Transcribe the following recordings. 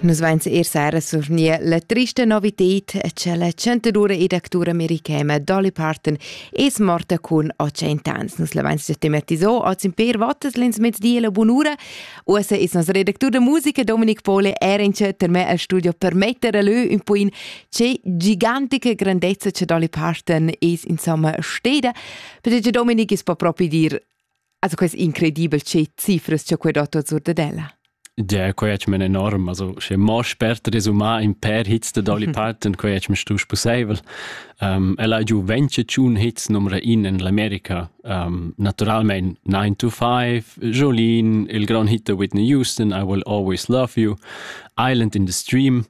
Nus vains eir sera survgni la trista novited cha la chantadura ed actura americana Dolly Parton es morta cun 80 ans. Nus l'avains già tematiso oz in per votas l'ins mezdi la bunura. Uossa es nos redactur da musica Dominik Pole era in per me al studio per metter lö un po in che gigantica grandezza cha Dolly Parton es insomma steda, perché Dominik es po propi dir Also quest incredibel che cifras che quei dotto zur de della. Ja, quei es men enorm, also sche mo spert resumar in per hits de Dolly Parton, quei es me stu sposaivel. Um, ella è giù 21 hits numero 1 in l'America. Um, naturalmente 9 to 5, Jolene, il gran hit de Whitney Houston, I Will Always Love You, Island in the Stream.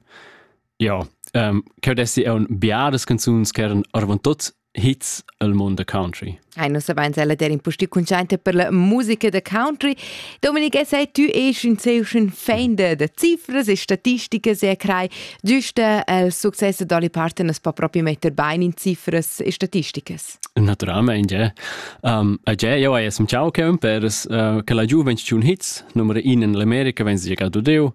Ja, um, ehm, che adesso è un biares canzuns che erano orvan tot hits el mund da country. Ai, nus savains ella der in pusti cuntschainta per la musica da country. Dominik, es sei tü esch in seuschen fan da, da cifras e statisticas e crai, giusta el successo d'Olly Parton as po propi metter bain in cifras e statisticas? Naturalmente, ja. Um, ja, io hai esem ciao cem per uh, che la giuventetun hits, numero in in l'America, wenn sie gerade deu,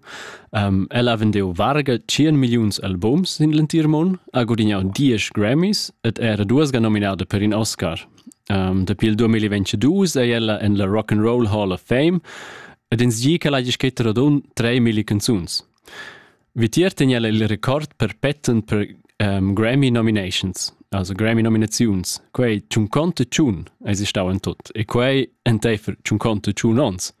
Um, el ha vendiu varga 100 milliuns albums sin l'entir mund, ha gudignau 10 Grammys ed era duas ga nominada per in Oscar. Um, dapi il 2022 è ella en la Rock and Roll Hall of Fame ed ins gi che l'hagi scrit radun 3.000 canzuns. Vitier tegna el il record perpetuant per um, Grammy nominations, also Grammy nominaziuns. Quei tschun conte tschun es stau en tut e quei enteifer tschun conte tschun ons.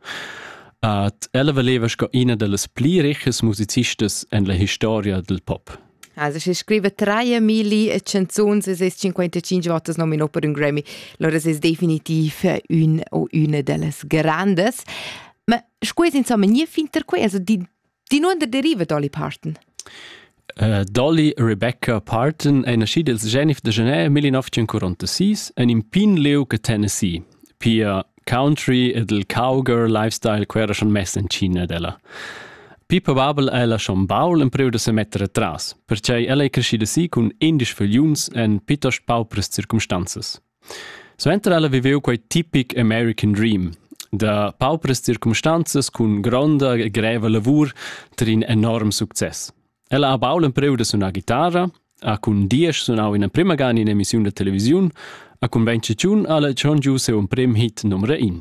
At ella valeva sco ina dellas pli richas musicistas en la historia del pop. Also, se scrive 3000 e 55 volte nominò per un Grammy, allora è definitiv un o una delle grandi. Ma scusi, insomma, niente fin per qui, also di Di nuonder deriva Dolly Parton? Uh, Dolly Rebecca Parton è nascida il Genef de Genève 1946 en in pin lieu che Tennessee. Pia country ed il cowgirl lifestyle quera schon mess in China della. Pi probabel è la schon baul in priu da se mettere tras, perciò ella è crescida si cun indisch figliuns en pitost paupres circumstanzas. Suenter ella viveu quei tipic American Dream da paupras circumstanzas cun gronda e greva lavur tar in enorm success. Ella ha bau l'empreu da sunar guitarra, ha cun diesch sunau ina prima gana in emissiun da televisiun, ha cun ventschetiun alla schon giu siu emprim hit numero in.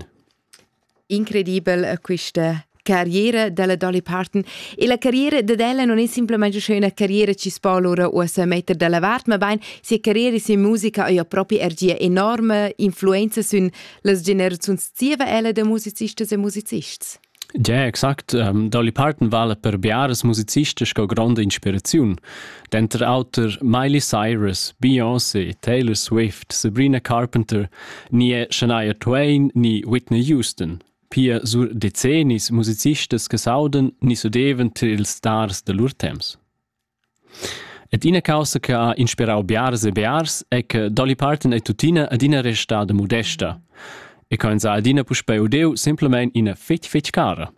Incredibel eh, questa carriera della Dolly Parton e la carriera dad ella non è semplicemente schon una carriera ci spo allora o a metter dalla vart ma bein sia carriera sia musica ha ja proprio er gia enorme influenza sün las generazions zieva ella de musicistas e musicists Ja, exakt. Um, Dolly Parton vale per biaras musicistas co grande inspiraziun. Denter auter Miley Cyrus, Beyoncé, Taylor Swift, Sabrina Carpenter, ni è Shania Twain ni Whitney Houston. Pia sur decennis musicistas che saudan ni sudevan tar ils stars da lur temps. Et ina causa che ha inspirau biars e biars è che Dolly Parton è tuttina adina restada modesta e che sa adina puspei udeu simplemente ina fitch fitch cara.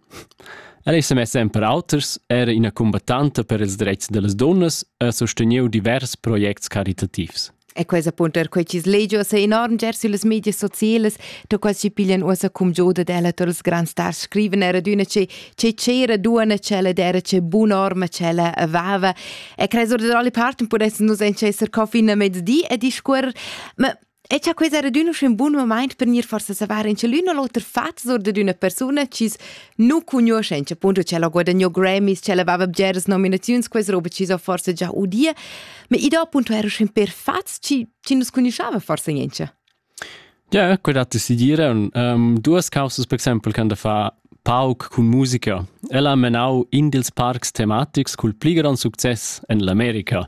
El ei semessa en per auters era ina cumbattanta per ils dretgs dallas dunnas e ha susteniu divers projects caritativs. E quei appuntar quei chis legios e enorm ger süllas medias socielas, da quas chi piglian uossa cum giuda della tar els grands stars scriven era d'üna che che c'era duona cella d'era che bunorma cella avava e cres or da dolli parten pudessan nus entschesser co fin a mezdi e discuorrer ma E cha quei era adüna uschè un bun moment per gnir forsa savar in l'ün o l'oter fat sur dad üna persuna chi's nu cugnuoschencha, appunto ch'ella ha guadagno Grammys, ch'ella aveva bgeras nominaziuns, quais roba chi's ho forsa già udia, ma i do appunto era uschè per fats chi, chi nus cugnuschava forsa niencha. Ja, quel dat si dire. Um, duas causas, per exempel, can da fa pauc cun musica. Ella ha menau in dils parcs tematics cul pli grand success en l'America.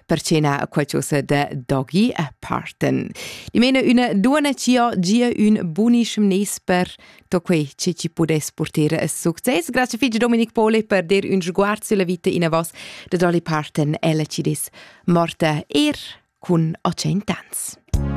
percena a qualcosa de dogi a parten. Di mena una duona cio gia un bunischem nes per to quei che ci podes porter a succes. Grazie figli Dominic Pole per dir un sguard sulla vita in a vos de doli parten ella ci dis morta er cun 800 ans.